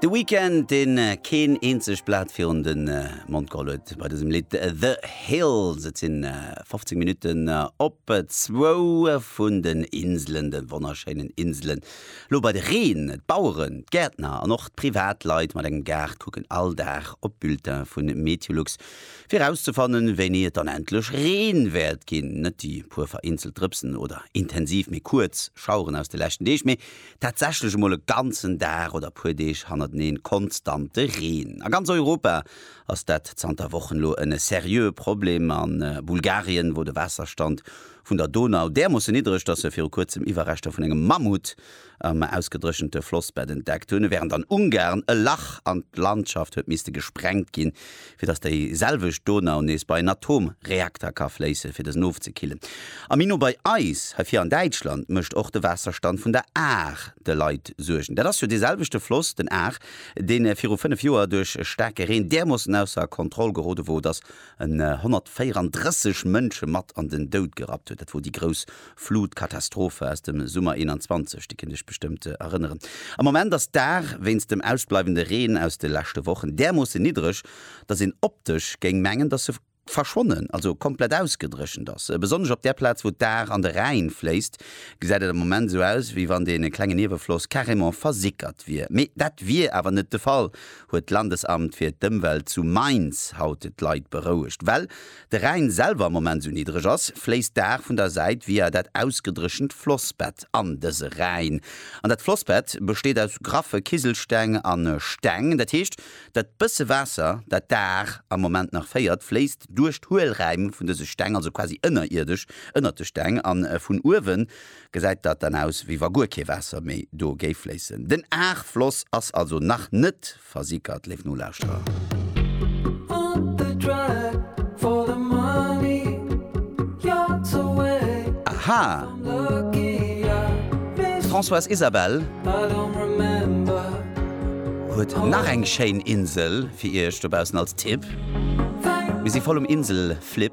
De Weeknd, deen keen eenzegt Blat virun den Mond geholl huet bei dësem Lidd The Hills. Et sinn 15 Minutten op zwou vun den Inselen, de wonnerschéinen Inselen. Lo bei de Reen. D'Baueren, d'Gäertner an och d'Privatleit mat engem Gaart kucken all Dag op Bulletin vun Meteolux fir erauszefannen wéini et dann endlech Reen wäert ginn. Net déi puer vereenzelt Drëpsen oder intensiv mee kuerz Schaueren aus de leschten Deeg, mee Tatsächlech emol e ganzen Dag oder e puer Deeg hannerteneen konstante Reen. A ganz Europa ass dat zanter Wochen elo en seriöe Problem. A Bulgarien wor de Waasserstand vun der Donau därmoosse niddreg, dass se viru kuerzem Iwwerreschter vun engem Mammut am ausgedréchente Flossbett entdeckt hunn, wärend an Ungarn e Lach an d'Landschaft huet misste gesprengt ginn, fir dass déi selwecht Donau nees bei en Atomreakter ka fléisse fir dësen ofzekillen. A méi no bei eis, hei vir an Däitschland, mécht och de Waasserstand vun der Ahr de Leit Suergen. Dat ass jo dee selwechte Floss, den Ahr, dee viru 5 Joer duerch e staarke Reen därmoossen ausser Kontroll gerode wor, dass en 134 Mënsche mat an den Doud gerappt huet. Dat wor déi grouss Flutkatastrophe aus dem Summer 21, déi kënnt Iech bestëmmt erënneren. Am Moment ass d'Aar wéinst dem ausbleiwende Reen aus de leschte Wochen därmoosse niddreg, dass een optesch géing mengen, dass se verschwonnen, also komplett ausgedréchent ass. Besonnesch op där Plaz, wou d'Aar an de Rhäin fléisst, gesäit et am Moment esou aus, wéi wann dee klenge Niewefloss carrément versickert wier. Mee dat wier awer net de Fall, huet d'Landesamt fir d'Ëmwelt zu Mainz haut d'Leit berouegt. Well De Rhäin selwer am Moment sou niddreg ass, fléisst d'Aar vun der Säit via dat ausgedréchent Flossbett an dëse Rhäin. An dat Flossbett besteet aus graffe Kiselsteng a Steng. Dat heescht, dat bësse Waasser, dat d'Aar am Moment nach féiert, fléisst duerch d'Huelräim vun dëse Steng, also quasi ënnerierdesch ënnert de Steng. A vun uewe gesäit dat dann aus, wéi wa guer kee Waasser méi do géif fléissen. Den Aarfloss ass also nach net Versickert, léif Nolauschterer! Aha! D'Françoise Isabelle huet nach eng schéin Insel fir iech dobaussen als Tipp. Mir si voll um Insel-Flip.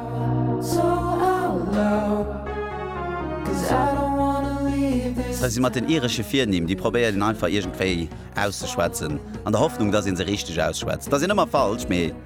Hei si mat den iresche Virnimm, déi probéiert een einfach iergendwéi auszeschwätzen, an der Hoffnung, dass ee se richteg ausschwätzt. Dass een ëmmer falsch, mee.